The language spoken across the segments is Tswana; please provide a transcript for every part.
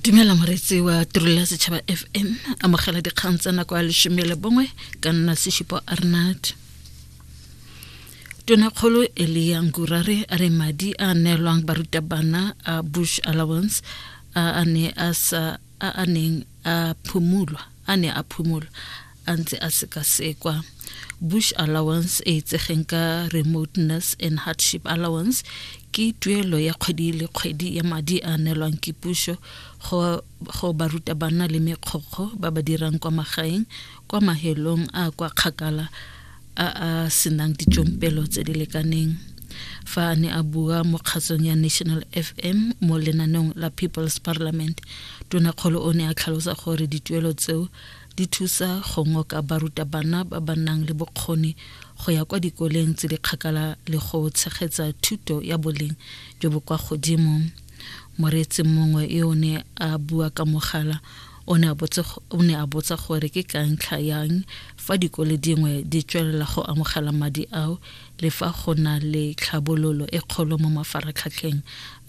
dumela moreetsi wa tirelo ya setšhaba fm amogela dikgang tsa nako ya lesome le bongwe ka nna seshupo arnat tonakgolo elia ngurare a re madi a neelwang barutabana a bush allowance a a ne a sa a a neng a phumulwa a ne a phumulwa a ntse a sekasekwa bush allowance e itsegeng ka remoteness and hardship allowance ke tuelo ya kgwedi le kgwedi ya madi a neelwang ke puso go barutabana le mekgokgo ba ba dirang kwa magaeng kwa mahelong a kwa kgakala a a senang ditšompelo tse di lekaneng fa a ne a bua mo kgatsong ya national fm mo lenaneong la people's parliament tonakgolo o ne a tlhalosa gore dituelo tseo di thusa go ngoka barutabana ba ba nang le bokgoni go ya kwa dikoleng tse di kgakala le go tshegetsa thuto ya boleng jo bo kwa godimo moreetsi mongwe yo o ne a bua ka mogala o ne a botsa gore ke ka ntlha yang fa dikole dingwe di tswelela go amogela madi ao Le fa go na le tlhabololo e kgolo mo mafaratlhatlheng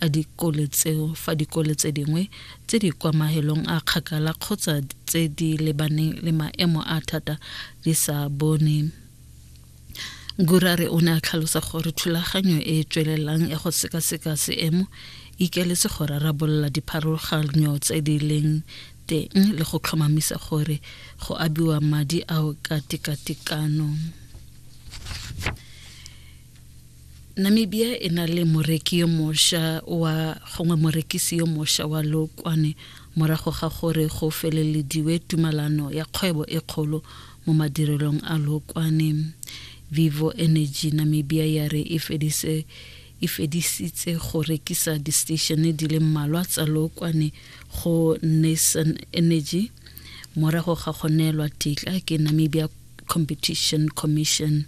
a dikole tseo fa dikole tse dingwe tse di kwa mahelong a kgakala kgotsa tse di lebaneng le maemo a thata di sa bone Gurare o ne a tlhalosa gore thulaganyo e e tswelelang ya go sekaseka seemo e ikeletse go rarabolola dipharologanyo tse di leng teng le go tlhomamisa gore go abiwa madi ao ka tekatekano. namibia e na le moreki yo mosha wa gongwe morekisi yo mosha wa lokwane morago ga gore go felelediwe tumalano ya kgwebo e kgolo mo madirelong a lokwane vivo energy namibia ya re e fedise e fedisitse go rekisa di-statione di le mmalwa tsa lokwane go nason energy morago ga go neelwa tetla ke namibia competition commission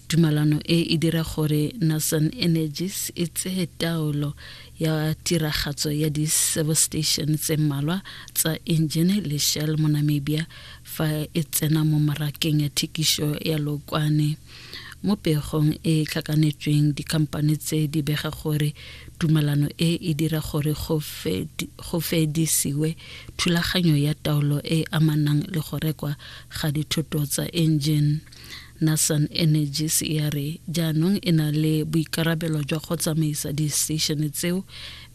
tumalano e e dira gore nasan energies e tseye taolo ya tiragatso ya di-service station tse mmalwa tsa engine le shell mo namibia fa e tsena mo marakeng ya thekišo ya lokwane mo pegong e tlhakanetsweng dikhamphane tse di bega gore tumalano e e dira gore go fedisiwe thulaganyo ya taolo e amanang le go rekwa ga dithoto tsa engine nasan energies e a re jaanong e na le boikarabelo jwa go tsamaisa di-station tseo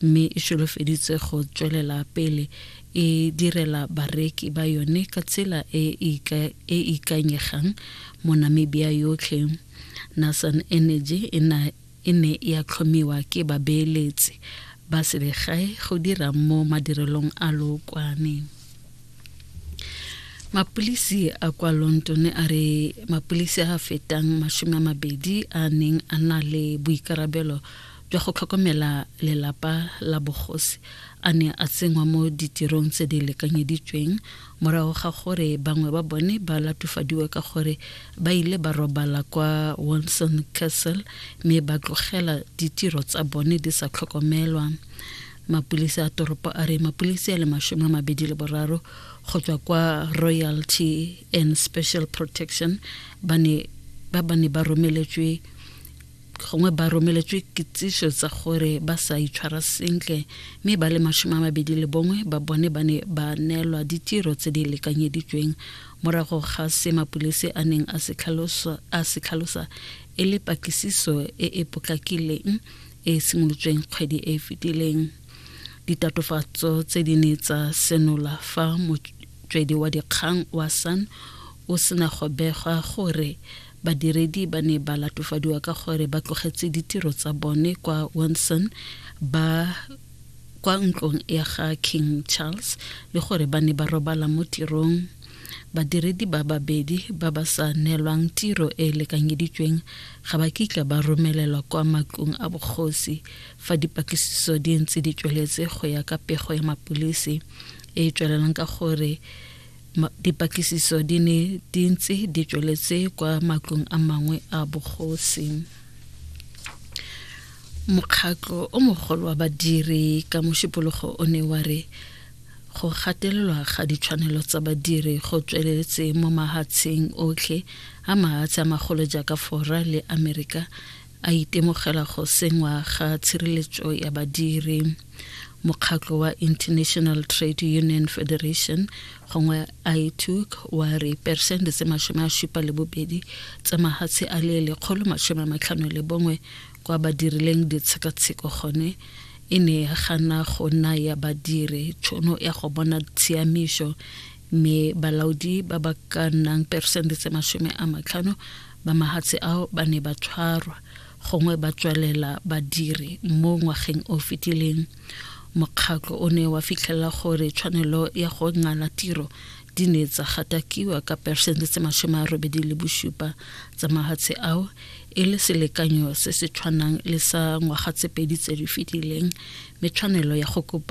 mme e solofeditse go tswelela pele e direla bareki ba yone ka tsela e e ikanyegang mo namibia yotlhe nasan energy e na e ne ya tlhomiwa ke babeeletsi ba selegae go dira mo madirelong a lookwane mapulisi a kwa london a re mapulisi a fetang masome a mabedi a neng a na le boikarabelo jwa go tlhokomela lelapa la bogosi a ne a tsenngwa mo ditirong tse di lekanyeditsweng morago ga gore bangwe ba bone ba latofadiwe ka gore ba ile ba robala kwa Wilson Castle mme ba tlogela ditiro tsa bone di sa tlhokomelwa mapulisi a toropo a re mapulisi a le masome a mabedi le boraro go tswa kwa royalty and special protection ba ne ba ba ne ba romeletswe gongwe ba romeletswe kitsiso tsa gore ba sa itshwara sentle mme ba le masome a mabedi le bongwe ba bone ba ne ba neelwa ditiro tse di lekanyeditsweng morago ga se mapulisi a neng a se tlhalosa e le patlisiso e e potlakileng e e simolotsweng kgwedi e e fetileng ditatofatso tse di ne tsa senola fa motswedi wa dikgang wa san o sena go begwa gore Badiredi ba ne ba latofadiwa ka gore ba tlogetse ditiro tsa bone kwa Windsor ba kwa ntlong ya ga King Charles le gore ba ne ba robala mo tirong. Badiredi ba babedi ba ba sa neelwang tiro e e lekanyeditsweng ga ba kitla ba romelelwa kwa matlong a bogosi fa dipatlisiso di ntse di tsweletse go ya ka pego ya mapolisi e e tswelelang ka gore dipatlisiso di ne di ntse di tsweletse kwa matlong a mangwe a bogosi mokgatlo o mogolo wa badiri ka mošupologo o ne wa re go gatelelwa ga ditshwanelo tsa badiri go tsweletse mo mahatsheng otlhe a mahatshe a magolo jaaka fora le amerika a itemogela go sengwa ga tshireletso ya badiri mokgatlo wa international trade union federation gongwe ituk wa re persente tse masome a supa le bobedi tsa mahatshe a le lekgolo masome a matlhano le bongwe kwa ba dirileng ditshekatsheko gone e ne ya gana go naya badiri tšhono ya go bona tshiamišo mme balaodi ba ba ka nnang peresente tse masome a matlhano ba mahatshe ao ba ne ba tshwarwa gongwe ba tswalela badiri mo ngwageng o fetileng mokgatlho o ne wa fitlhelela gore tshwanelo ya go ngala tiro di ne tsa gatakiwa ka peresente tse masome a robedi le bosupa tsa mahatshe ao e le selekanyo se se tshwanang le sa ngwaga tse pedi tse di fetileng mme tshwanelo ya go kopa